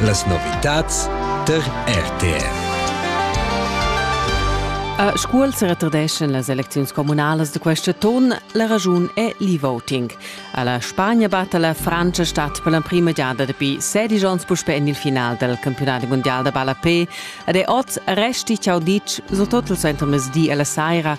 Las novitads tar RTR. A Scuol se retardeschan las elecziuns communalas da quest ton. La ragiun è l'e-voting. A la Spagna batta la Francia stat per l'emprima giada dapi 16 onns puspe en il final del campionat mondial da ballapé ed è oz resti ciao ditg, surtut il suenter mezdi e la saira,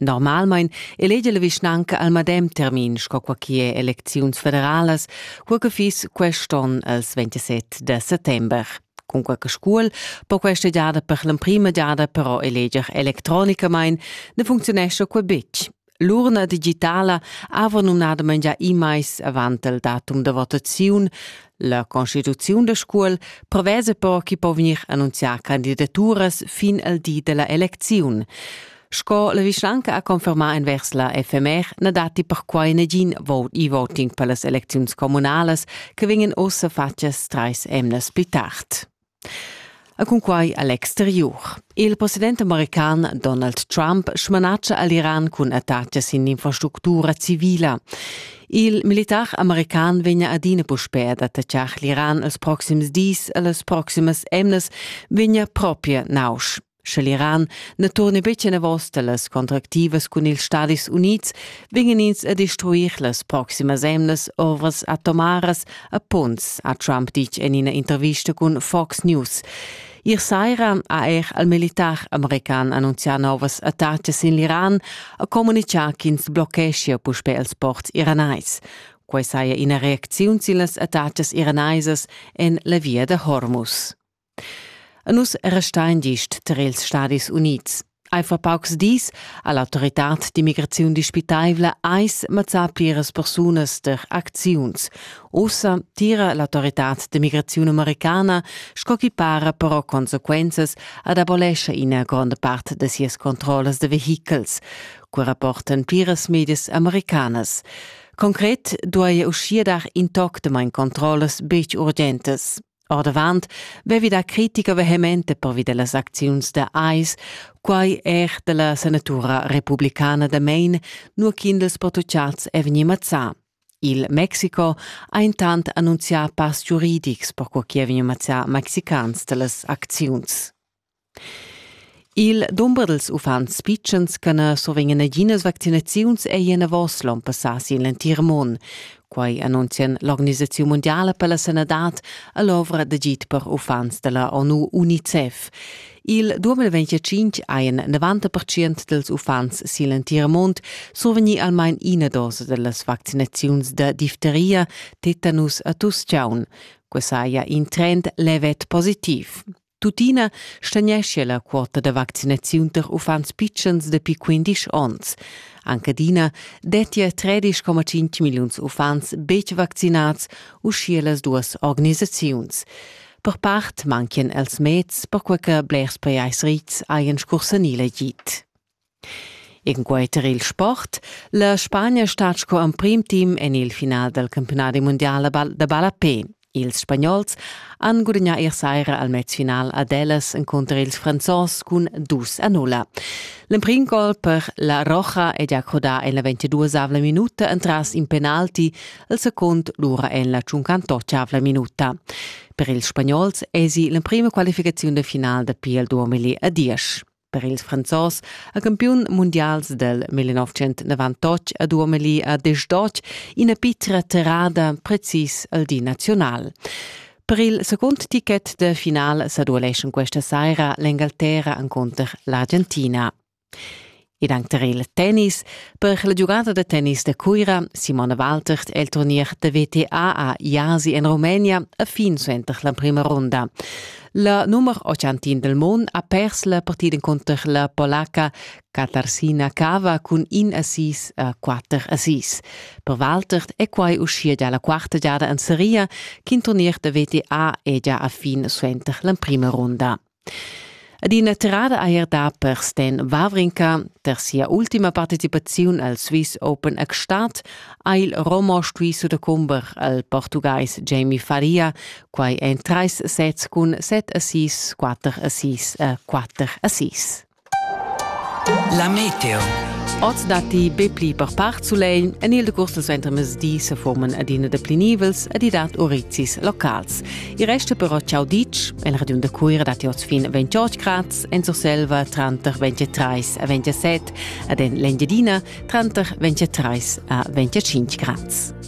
Normalmein elegi la vischnanca al medem termin sco qua che elecziuns federalas, cur che fiss quest'on els 27 de settember. Cun qualche scuol po questa giada per l'emprima giada però eleger electronicamain, ne funzionesce qua betg. L'urna digitala ava numnadament già immais avant il datum de votaziun. La constituziun da scuol prevese però chi po vegnir annunzià candidaturas fin al di della elecziun. Sco la vischanca ha confermà envers la FMR na datti perquai nagin vote e-voting per las elecziuns communalas che vegnan ussa fatgas trais emnas pli tard. E cunquai a l'exteriur. Il president american Donald Trump smanatscha a l'Iran cun attacas in infrastructura civila. Il militar american vegna adina puspè ad attaccar l'Iran els proxims dis e las proximas emnas vegna propria nausch. Sche l'Iran ne turne betg enavos dellas contractivas cun ils Stadis Unids, vingen ins a destruir las proximas emnas ovras atomaras a punts, ha Trump ditg en ina intervista cun Fox News. Ier saira ha er il militar american annunzià novas attacas sin l'Iran e communicà ch'ins blocheschia puspè ils ports iranais. Quai saja ina reacziun sin las attacas iranaisas en la via da Hormuz. A nus restain gist tar ils Stadis Unids. Ei fa paucs dis ha l'autoritad d'immigraziun dispitaivla eis mazzà pliras persunas der acziuns. Ussa tira l'autoritad d'immigraziun americana, sco chi para però consequenzas, ad abolescha ina gronda part da sias controllas de vehichels, co rapportan pliras medias americanas. Concret duai uschia dar intoctamain controllas betg urgentas. Ordavant vevi da critica vehemente pervi dellas acziuns da AIS, quai er della senatura republicana da Maine, nur ch'in dels protochats è vegni mazzà. Il Mexico ha intant annunzià pass giuridics per co chi è vegni mazzà mexicans dellas acziuns. Il dumber dals uffants pitschens che na survegnan naginas vaccinaziuns è enavos l'onn passà sin l'entir mund. Quai annunzian l'Organisaziun mundiala per la sanadad e l'ovra d'agid per uffants da la ONU UNICEF. Il 2025 hajan 90% dals uffants sin l'entir mund survegnì almain ina dosa da las vaccinaziuns da difteria, tetanus e tuschlaun. Quai saja in trend levet positiv. Tuttina stagneschia la quota da vaccinaziun tar uffants pitschens dapi 15 onns. Anche adina dettia 13,5 milliuns uffants betg vaccinads, uschia las duas organisaziuns. Per part manchian els meds, perquai che blers pajais rits hajan scursanì l'agid. Encunter il sport la Spagna stat sco emprim team en il final dal campiunadi mundial da ballapè. Ils spagnols han gudagnà ier saira al mezfinal ad Elas encunter ils Franzos cun dus a nulla. L'emprim gol per la Roja è già crodà en la 22 minuta entras in penalti, il secund lura en la 58 minuta. Per ils spagnols èsi l'emprima qualificaziun de final da PL 2010. Per ils Franzos ha campiun mundials del 1998 a Duomeli a Desdotsch ina pitra terrada precis al di nazional. Per il secund ticket de final sa dueleschan questa saira l'Engalterra encontro l'Argentina. Ed anche per il tennis, per la giocata de tennis de Cuira, Simone Waltert el turnier de WTA a Jasi in Romania a fin suenter la prima ronda. La numer 80 del mon ha pers la partida conter la polaca Katarsina Kava cun in assís a quatter assís. Per Walter è quai uschia già la quarta giada en seria ch'in turnier da VTA è già a fin suenter l'emprima ronda. Ed ina tirada ha er dà per Sten Wawrinka. Per sia ultima participaziun al Swiss Open a Gstaad ha il Romo stuì sudacumber al Portugais Jamie Faria quai èn trais sets cun set assis, quatter assis e quatter assis. La meteo. Oz datti be pli per part sulegl. En il decurs dal suentermezdi se forman adina deplinivels ed i dat urizis locals. Il resto però ciao ditg. En Radion da Cuira datti oz fin 28 grad, en Surselva tranter 23 e 27 ed en l'Engiadina tranter 23 e 25 grad.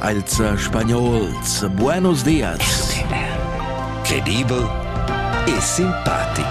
als spagnols buenos dias. Credibel e simpatic.